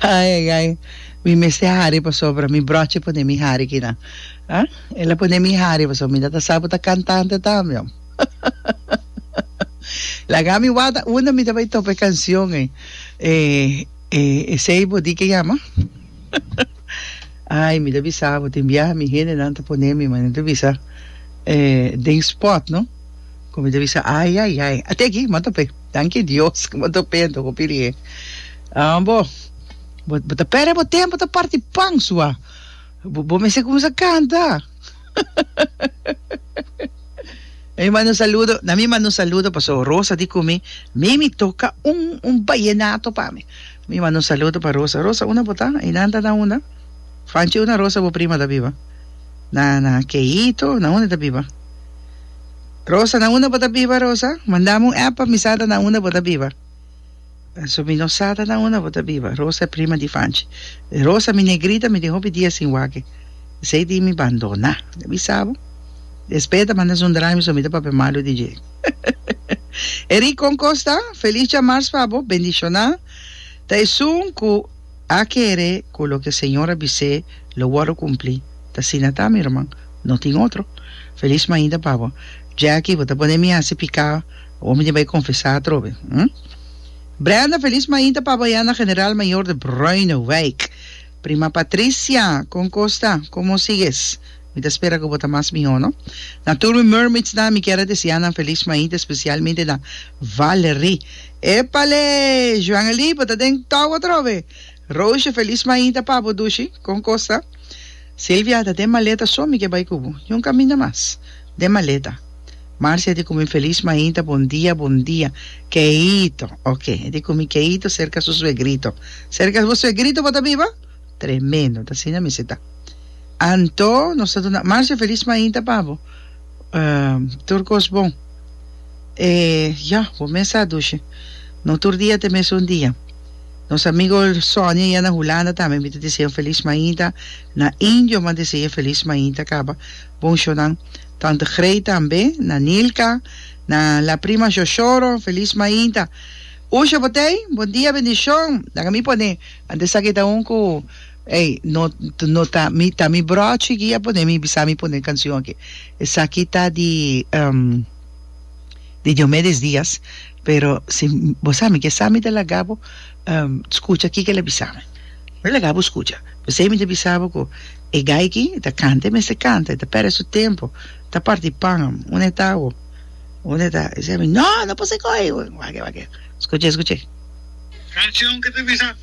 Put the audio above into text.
Ai ai ai mi mester hari pasobra mi brochi pone mi hari kina ah el a pone mi hari pasobra mi ta sa bo ta cantante tambe oh laga mi wata unda mi ta bay topa e cancion ei e esey bo di ke yama ai mi ta bisa bo tin biaha mi hendenan ta pone mi mane ta bisa eh den spot no ku mi ta bisa ai ai ai ate aki mi a tope. Danki Dios ku bo ta penta ku piri'é. Bo bo ta pèrdè bo tempu ta parti pan sua. Bo mester kuminsá kanta. Na mi manda un saludo, na mi manda un saludo paso Rosa di ku mi, Mimi toka un un bayenato pa mi. Mi manda un saludo pa Rosa. Rosa unda bo ta? I nan ta na unda? Fanchi unda Rosa bo prima ta biba? Na na Keito? Na unda e ta biba? Rosa, na unda bo ta biba Rosa? Mandami un app pa mi sa ta na unda bo ta biba. So mi no sa ta na unda bo ta biba. Rosa e prima di Fanchi. Rosa, mi negrita mi tin hopi dia sin wak e. Esei tin mi bandona. Mi bisa bo. Despe e ta manda su drami so mi ta papia malu di dje. Eric, kon kosta? Feliz dja mars pa bo. Bendishonan. Ta esun ku. A kere ku loke Señor a bis'é lo wòrdu kumplí. T'asina ta, mi ruman, no tin otro. Felis mainda pa bo. Jackie, bo ta pone mi hasi piká, bo mi tin bai konfesá atrobe, hm? Brenda, felis mainda pa bo ya na General Mayor de Bruinowijk. Prima Patricia, kon kos ta? Komo sigues? Mi ta spera ku bo ta mas mihó, no. Na tur mi mermaidsnan mi kier a deseá nan felis mainta, spesialmente na Valery. Epale! Juan Eli, bo ta den tòw atrobe! Roosje, felis mainta pa bo dushi. Kon kosa? Silvia, ta den maleta so mi ke bai ku bo. Yon kaminda mas. Den maleta. Marcia, e di ku mi felis mainta, bon dia, bon dia. Keito. Oke, e di ku mi Keito serka su suegrito. Serka bo suegrito bo ta biba? Tremendo, ta asina mester ta. Anto nos ta duna Marcia feliz mainta pa bo. Um, tur cos bon. E ya, bo mes sa dushi. No tur dia ta e mesun dia. Nos amigo Sonia ya na Hulanda tambe mi ta dise un feliz mainta. Na Indio mi a dise e feliz mainta caba. Bon shownan. Tante Grey tambe, na Nilka, na la prima Shoshoro, feliz mainta. Usha Botey, bon dia, bendicion. Laga mi pone. Ant esaki ta un ku ey no no ta mi ta mi brochi ki a pone mi bisa mi pone kancion aki esaki ta di um di Diomedes Diaz pero si bo sa mi ke sa mi ta laga bo um skucha kiko el a bisa mi mi laga bo skucha pesey mi ta bisa bo ku e guy aki ta kanta e mester kanta e ta perde su tempo ta parti pan una e ta awo. Un e ta, esaki mi, no, no por ser coge. Wak e, wak e. Scuche, scuche. Cancion ke ta bisa.